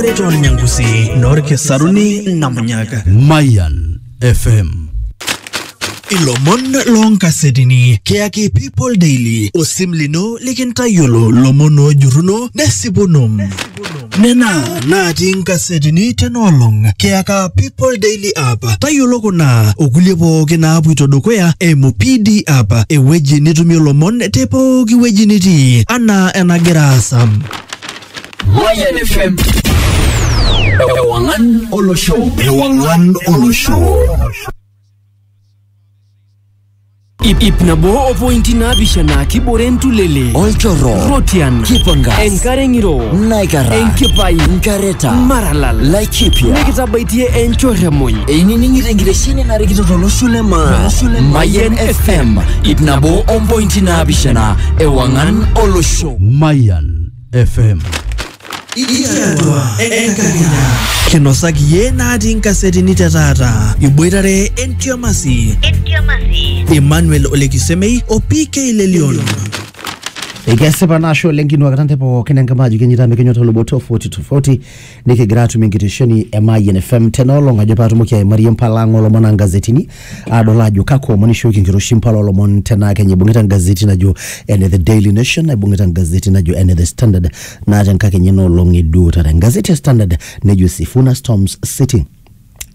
Preton Nyangusi, Norke Saruni, Namunyaka. Mayan FM. Ilomon lonkasetini keyaki People Daily osim lino likintayiolo lomon ojuruno nesipuno nena natii nkasetini tenaolong keyaka People Daily app tayiolo kuna okulie pooki naapuito dukuya eimu PD app ewueji nitumie lomon te pooki wueji nitii anaa enagira aasa Mayan FM. Ewangan Olo Show. Ewangan Olo Show. Ip ip nabo o pointi naapishana kibore entulele olchorro rotian kipangas enkare ng'iro naikara enkipai nkareta maralal laikipia nikitabaitie enchorremoi einining'ito enkitesheni narikito tolosho le maa mayen fm ip nabo ompointi naapishana ewang'an olosho Mayan FM. Ikiatua enkakenya. Kinosaki iyie natii nkasetini te taata. Iboitare entiamasi. Emmanuel Olekisemei o PK Lelion. Ikesipa naa ashe oleng kinuakita nte pookin enkima ajo kenyita mikinyota oloboto 40 to 40 nikigira atum enkitesheni e Mayian FM tena olong ajo paatumoki aimarie impala ang olomon aa ngazetini adol ajo kakwa omon ishooki enkiroshi impala olomon tenaa kenya ibung'ita engazeti najo ene The Daily Nation naibung'ita engazeti najo ene The Standard naa tenkakenya ena olong eduo taata engazeti e Standard nejo Sifuna Storms City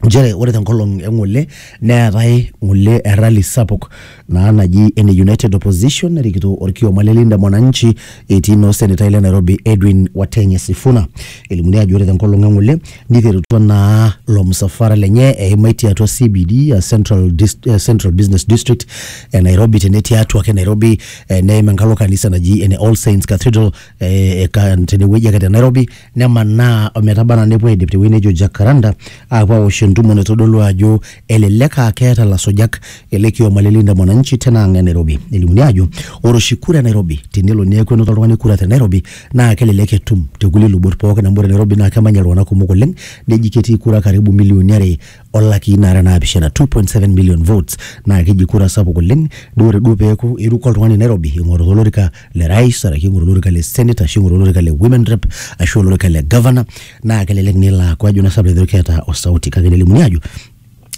nchere ore te nkolong e ng'ole neetae ng'ole e rally sapuk naa naji ene United Opposition narikito orkioma le Linda Mwananchi etii naa osenetai le Nairobi Edwin Watenya Sifuna. Elimuni ajo ore te nkolong e ng'ole niterutua naa ilo msafara lenye eimaitie atua CBD aa Central, Dis- eh, Central Business District e Nairobi tenetii atua ake Nairobi eh, neim enkalo kanisa naji ene All Saints Cathedral eh, eka- tenewueji ake te Nairobi nemanaa ometaba anaa nepuo aidip tewueji nejo Jacaranda aapuo awosh entumo naitodolu ajo elelek aa keeta lasujak ele kioma le Linda Mwananchi tena ang' e Nairobi. Elimuni ajo ore oshi kura e Nairobi tenelo neeku enoto oltung'ani kura te Nairobi naa kelelek etum tekulie lubot pookin amu ore Nairobi naa kemanya iltung'anak kumok oleng neji ketii kura karibu milioni are olakii nara naapishana 2.7 million votes naa keji kura sapuk oleng duo ore duo peeku iruko oltung'ani nairobi ing'oru olorika le rais arashu ing'oru olorika le senate ashu ing'oru olorika le women rep ashu olorika le governor naa kelelek nelo aaku ajo naa sanu ajo keeta osauti kake nelimuni aajo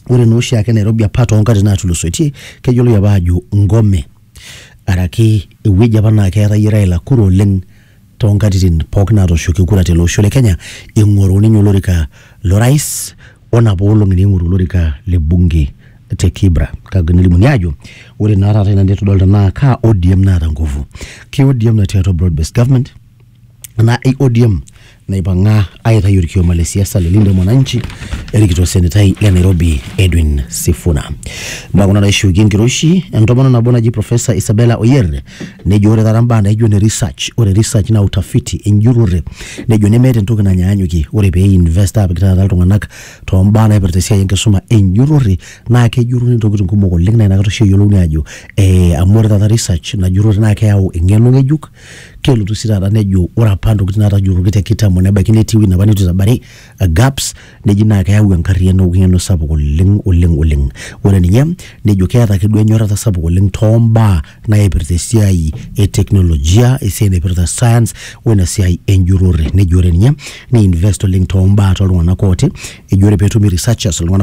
ore naa oshiake nairobi apa toonkatitin naatulusoitie keyioloi apa aajo ngome araki ewueji apa naa keetayie raila kura oleng too nkatitin pooki naatooshoki kura tele osho le Kenya ing'oru ninye olorika lo rais o napa olong'i neing'oru olorika le bunge te Kibra kake nelimuni aajo ore naa taata ina nitodolita naa kaa ODM naata nguvu. Ke ODM natii atua broad based government enaa ei ODM naipang'a aitayu olkioma le siasa le Linda Mwananchi erikito osenetai le Nairobi Edwin Sifuna. Naa kuna naishuukie enkiroshi entomononi nabo naji Professor Isabella Oyer Nejo ore taata mbaa naijo ne research, ore research naa utafiti, enjurore, nejo nemeeta entoki nanyaanyukie. Ore pee i-invest aapik taata iltung'anak too mbaa naipirta esiai enkisuma enjurore naa kejuruni ntokitin kumok oleng' naa inakata oshi eyolouni aajo ee amu ore taata research ina jurore naake eyau eng'eno ng'ejuk, kelotu sii taata nejo ore apa ntokitin naatajuruoki te kitambo nebaiki netii ewuei napa nitu itabari gaps neji naa keyau enkarriyiano weng'eno sapuk oleng oleng oleng ore ninye nejo keeta ake duo enyorrata sapuk oleng tombaa naipirta esiai e teknolojia esiai naipirta science wena siai enjurrore neji ore ninye nei invest oleng tombaa toltung'anak ooti eji ore petumi researchers iltung'anak